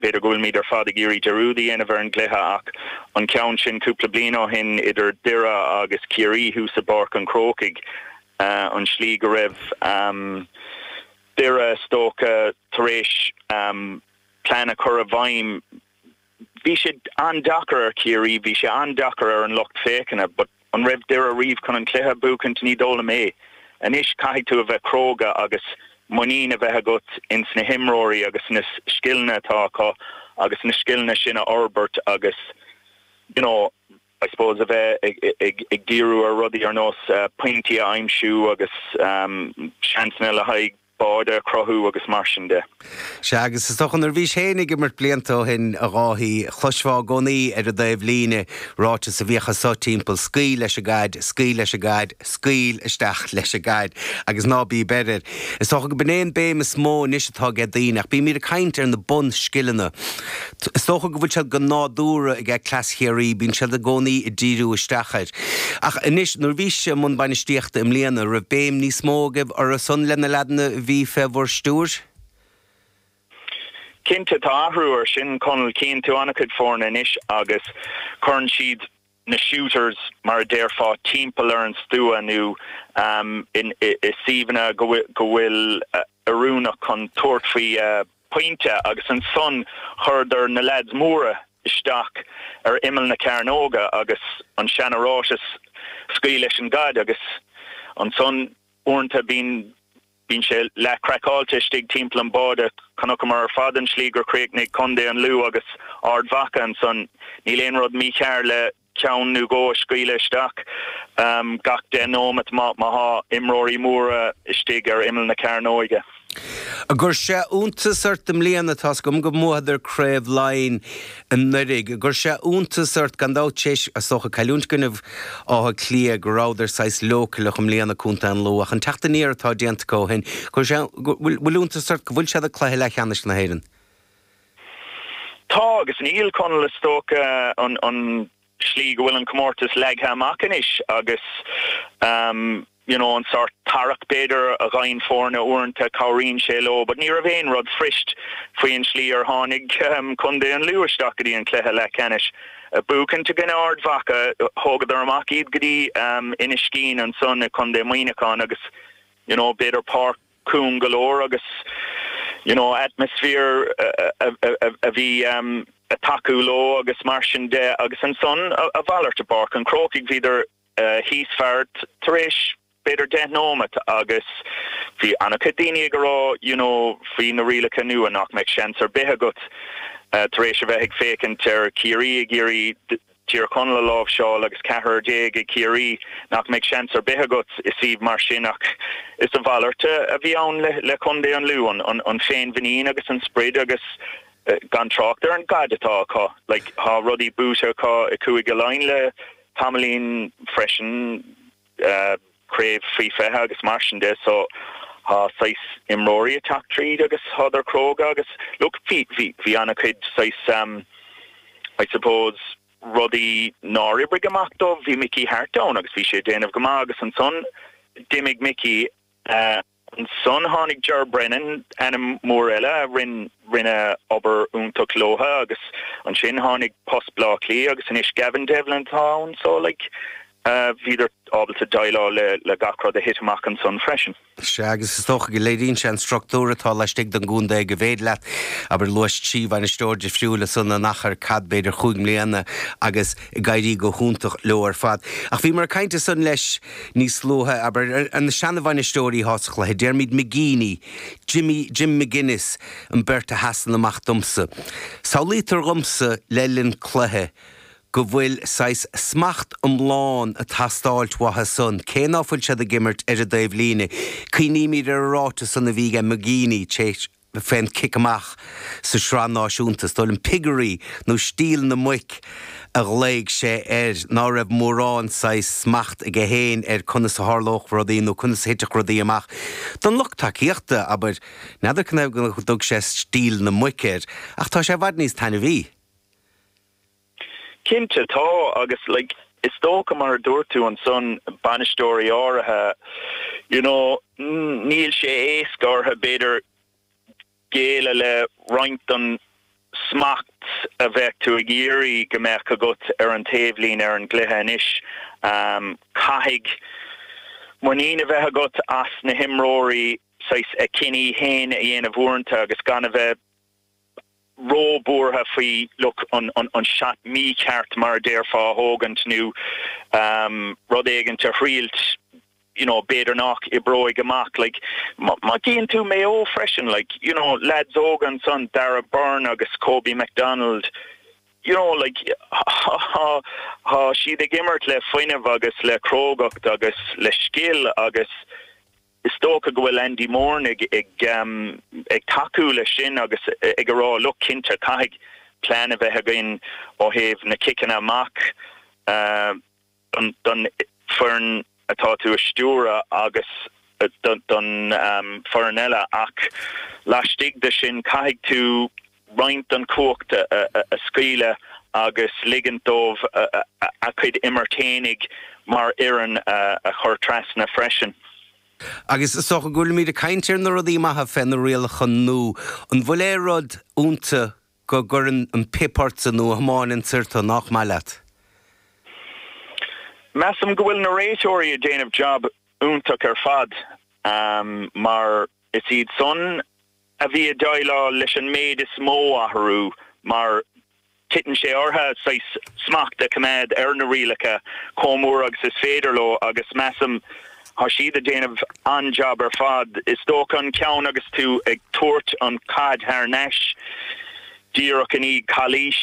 B'fhéidir go bhfuilimid ar fad ag iarraidh dearúd a dhéanamh ar an gcluiche ach an ceann sin cúpla bliain ó shin idir Doire agus Ciarraí thuas i bPáirc an Chrócaigh, an tslí go raibh Doire, is dócha, tar éis plean a chur i bhfeidhm, bhí sé an-deacair ar Chiarraí, bhí sé an-deacair ar an lucht féachana but, An raibh Doire riamh chun an cluiche a bhuachaint? Ní dóigh liom é. Anois caithfidh tú a bheith cróga agus muinín a bheith agat ins na himreoirí agus sna scileanna atá acu agus na scileanna sin a fhorbairt agus you know, I suppose a bheith ag díriú ar rudaí ar nós pointí a aimsiú agus seansanna le haghaidh báide a chruthú agus mar sin de. Sea, agus is dócha nuair a bhís féinig ag imirt blianta ó shin a Dháithí, chloisfeá i gcónaí ar an dtaobh líne ráiteas a bhíodh anso timpeall 'Scaoil leis an gcaid, scaoil leis an gcaid, scaoil isteach leis an gcaid' agus ná bí b'fhéidir. Is dócha go b'in é an béim is mó anois atá aige daoine ach bímíd ag caint ar na bunscileanna. Is dócha go bhfuil sé de nádúr ag cleas Chiarraí, bíonn siad i gcónaí ag díriú isteach air. Ach anois, nuair a bhís i mbun bainistíochta i mbliana, raibh béim níos mó agaibh orthu san le na leaideanna a bhí fé bhur stiúir? Cinnte, tá athrú ar sin, Conall. Cíonn tú an-chuid foirne anois agus cuireann siad. na shooters, mar a déarfá, timpeall ar an stua nó i suíomhanna go bhfuil oiriúnach chun tabhairt faoi phointe agus ansan chuireadar na leaids móra isteach ar imeall na cearnóga agus an seana-ráiteas Scaoil leis an gcaid agus ansan uaireanta bíonn Bíonn sé leath-craiceáilte istigh timpeall an bháide. Chonaiceamar ar fad an tslí gur chríochnaigh Contae an Lú agus Ard Mhacha ansan. Níl aon rud mícheart le ceann nó dhó a scaoileadh isteach gach deich nóimeat má thá imreoirí móra istigh ar imeall na cearnóige. Ar chuir sé iontas ort i mbliana, tá's agam go mbuadar Craobh Laighean. Anuraidh, ar chuir sé iontas ort, gan dabht, tar éis is dócha cailliúint i gcoinnibh Átha Cliath go rabhadar saghas leochaileach i mbliana Contae an Lú, ach an teacht aniar atá déanta acu ó shin, ar chuir sé, bhfuil, bhfuil iontas ort go bhfuil siad ag cluiche leathcheannais na hÉireann? Tá, agus níl Conall is dócha an, an. slí go bhfuil an comórtas leagtha amach anois agus you know an sórt tarrac b'fhéidir a fhaigheann foirne uaireanta cabhraíonn sé leo but ní raibh aon rud fuirist faoi an slí ar tháinig Contae an Lú isteach go dtí an cluiche leathcheannais buachaint i gcoinne Ard Mhacha thógadar amach iad go dtí Inis Caoin ansan i gContae Muineacháin agus you know b'fhéidir Páirc cúng go leor agus you know atmaisféar a bhí ag tacú leo agus mar sin de agus ansan a mhalairt i bPáirc an Chrócaigh bhíodar thíos fear tar éis b'fhéidir deich nóimeat agus bhí an-chuid daoine ag a rá you know faoi na rialacha nua nach mbeadh seans ar bith agat tar éis a bheith ag féachaint ar Chiarraí ag iarraidh Tír Chonaill a láimhseáil agus ceathrar déag ag Ciarraí, nach mbeidh seans ar bith agat i suíomh mar sin ach is a mhalairt a bhí ann le contae an Lú, an féinmhuinín agus an sprid agus gan trácht ar an gcaid atá acu. Tá rudaí buaite acu i gCúige Laighean le tamaillín freisin. craobh faoi 20 agus mar sin de so tá saghas imreoirí ag teacht tríd agus tádar cróga agus look bhí bhí bhí ana-chuid saghas ehm I suppose rudaí nár oibrigh amach dóibh bhí Mickey Harte ann agus bhí sé déanamh go maith agus ansan d'imigh Mickey eh Ansan tháinig Ger Brennan, ainm mór eile, a rinne obair iontach leotha, agus ansin tháinig post Bleá Cliath, agus anois Gavin Devlin atá ann, so, like, bhíodar ábalta deighleáil le gach rud a thit amach ansan freisin. Sea, agus is dócha go léiríonn sé an structúr atá laistigh don gcontae ag a bhféad leat, abair, luais trí bhainisteoirí difriúla san in achar, cad, b'fhéidir chúig mbliana, agus ag éirí go hiontach leo ar fad. Ach bhíomar ag caint ansan leis. Níos luaithe, abair, na seanabhainisteoirí tá sa chluiche, Diarmuid McGeeney, Jim, Jim McGuinness, an bheirt a sheasann amach domsa. Samhlaítear dhomsa, le linn cluiche, go bhfuil saghas smacht iomlán ag teastáilt uathu san, cé ná fuil siad ag imirt ar an dtaobh líne. Cuimhnímid ar an ráiteas san a bhí ag McGeeney, téis, fén gcic amach sa tSraith Náisiúnta, is dóigh liom piggery nó stíl na muic a ghlaoigh sé air, ná raibh mórán saghas smacht aige féin ar conas a tharlódh rudaí nó conas a thitfeadh rudaí amach don lucht tacaíochta, abair, n'fheadar cén fáth go dtug sé stíl na muic air, ach tá sé i bhfad níos taitneamhaí. Cinnte tá, agus like is dócha mar a dúirt tú ansan, bainisteoirí áirithe, you know, níl sé éasca orthu b'fhéidir géilleadh roinnt den smacht a bheadh tú ag iarraidh go mbeadh agat ar an taobhlíne ar an gcluiche anois. Caithfidh muinín a bheith agat as na himreoirí saghas a gcinntí fhéin a dhéanamh uaireanta agus gan a bheith. ró-bhuartha faoi look an seat mícheart mar a déarfá a thógaint nó rud éigint a thriailt you know b'fhéidir nach oibreoidh amach like má tchíonn tú Maigh Eo freisin like you know lads óga ansan Darragh Beirne agus Kobe McDonald you know like tá siad ag imirt le fuinneamh agus le crógacht agus le scil agus Is dócha go bhfuil Andy Moran ag tacú leis sin agus ag a rá, look, cinnte, caithfidh plean a bheith againn ó thaobh na ciceanna amach don foireann atá tú a stiúradh agus don foireann eile ach laistigh de sin caithfidh tú roinnt den chumhacht a scaoileadh agus ligint dóibh a gcuid imirt fhéinig mar fhoireann a chur trasna freisin. Agus is dócha go bhfuilimíd ag caint ar na rudaí maithe fé na rialacha nua. An bhfuil aon rud ionta go gcuireann an pip ortsa nó a thiomáineann soir tú, nách maith leat? Measaim go bhfuil na réiteoirí ag déanamh jab iontach ar fad mar is iad san a bhí ag déileáil leis an méid is mó athrú, mar titeann sé orthu saghas smacht a choimeád ar na rialacha chomh mór agus is féidir leo, agus measaim tá siad ag déanamh an-jab ar fad. Is dócha an ceann agus tú ag tabhairt an chaid thar n-ais díreach i ndiaidh calaois.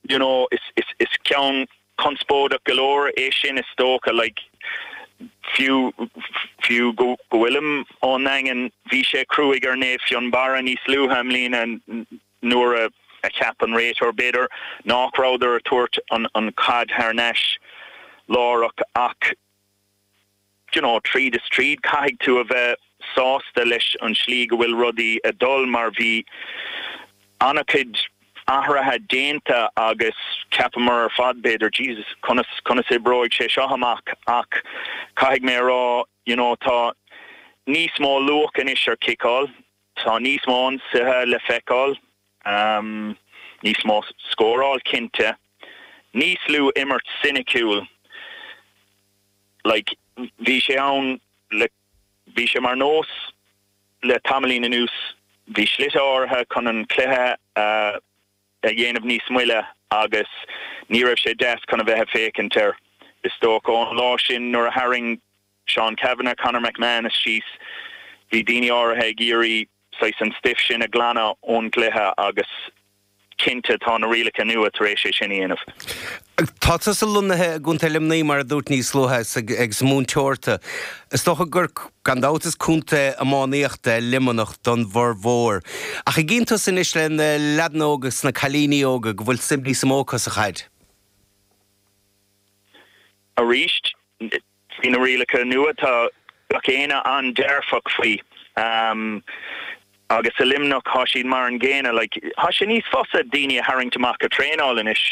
you know is ceann conspóideach go leor é sin is dócha like fiú fiú go bhfuilim ón nDaingean bhí sé cruaigh ar Naomh Fionnbarra níos luaithe i mbliana nuair a a cheap an réiteoir b'fhéidir nách rabhadar ag tabhairt an an chaid thar n-ais láithreach ach you know, tríd is tríd, caithfidh tú a bheith sásta leis an tslí go bhfuil rudaí ag dul mar bhí ana-cuid athraithe déanta agus ceapamar ar fad b'fhéidir Jesus conas, conas oibreoidh sé seo amach ach caithfidh mé a rá you know tá níos mó luach anois ar ciceáil, tá níos mó ionsaithe le feiceáil. Ámh, níos mó scóráil cinnte, níos lú imirt ciniciúil. Like, bhí sé ann le, bhí sé mar nós le tamaillín anuas, bhí slite áirithe chun an cluiche a dhéanamh níos moille agus ní raibh sé deas chun a bheith ag féachaint air. Is dócha ón lá sin nuair a tharraing. Seán Cavanagh, Conor McManus, síos. Bhí daoine áirithe ag iarraidh saghas an stuif sin a ghlanadh ón gcluiche agus cinnte tá na rialacha nua tar éis é sin a dhéanamh. Tá tusa lonnaithe i gContae Luimnigh, mar a dúirt níos luaithe, agus múinteoir tú. Is dócha gur, gan dabht, is contae iománaíochta é Luimneach don bhformhór. Ach an gcíonn tusa anois le na leaideanna óga agus na cailíní óga go bhfuil suim níos mó acu sa chaid? Arís, Faoi na rialacha nua, thá gach éinne an-dearfach faoi agus i Luimneach thá siad mar an gcéanna, like. Thá sé níos fusa daoine a tharraingt amach a' traenáil anois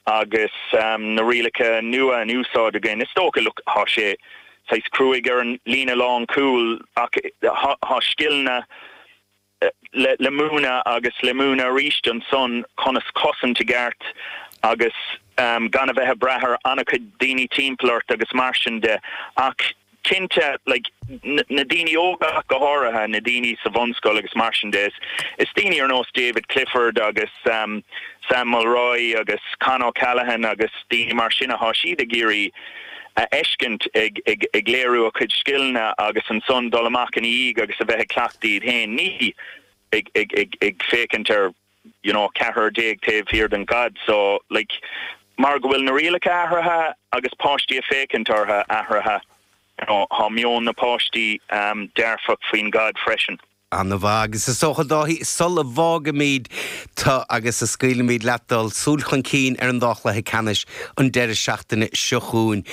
agus na rialacha nua in úsáid againn. Is dócha, look, thá sé saghas cruaidh ar an líne lánchúil ach thá scileanna, le múineadh agus le múineadh aríst ansan conas cosaint i gceart agus gan a bheith a' brath ar ana-chuid daoine timpeall ort agus mar sin de. Ach cinnte, like, na daoine óga ach go háirithe, na daoine sa bhunscoil agus mar sin de, is daoine ar nós David Clifford agus Sam Mulroy agus Con O'Callaghan agus daoine mar sin athá siad ag iarraidh, a fheiscint ag léiriú a gcuid scileanna agus ansan dul amach ina dhiaidh agus a bheith ag cleachtadh iad féin, ní ag féachaint ar you know ceathrar déag taobh thiar den gcaid so like mar go bhfuil na rialacha athraithe agus páistí ag féachaint ortha athraithe you know thá meon na páistí dearfach faoin gcaid freisin. Ana-mhaith. Agus is dócha, Dáithí, sul a bhfágaimid tú agus a scaoilimid leat dul, súil chun cinn ar an dá chluiche ceannais an deireadh seachtaine seo chugainn,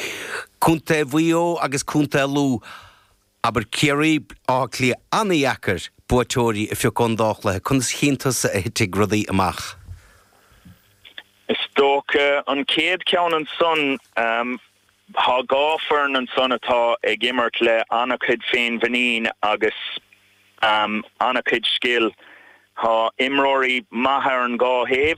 Contae Mhaigh Eo agus Contae Lú, abair Ciarraí, Átha Cliath. Ana-dheacair buaiteoirí a phiocadh ón dá chluiche. Conas a chíonn tusa a thitfidh rudaí amach? Is dócha an chéad cheann ansan, Thá dhá foireann ansan atá ag imirt le ana-chuid féinmhuinín agus ana-chuid scil. Thá imreoirí maithe ar an dhá thaobh.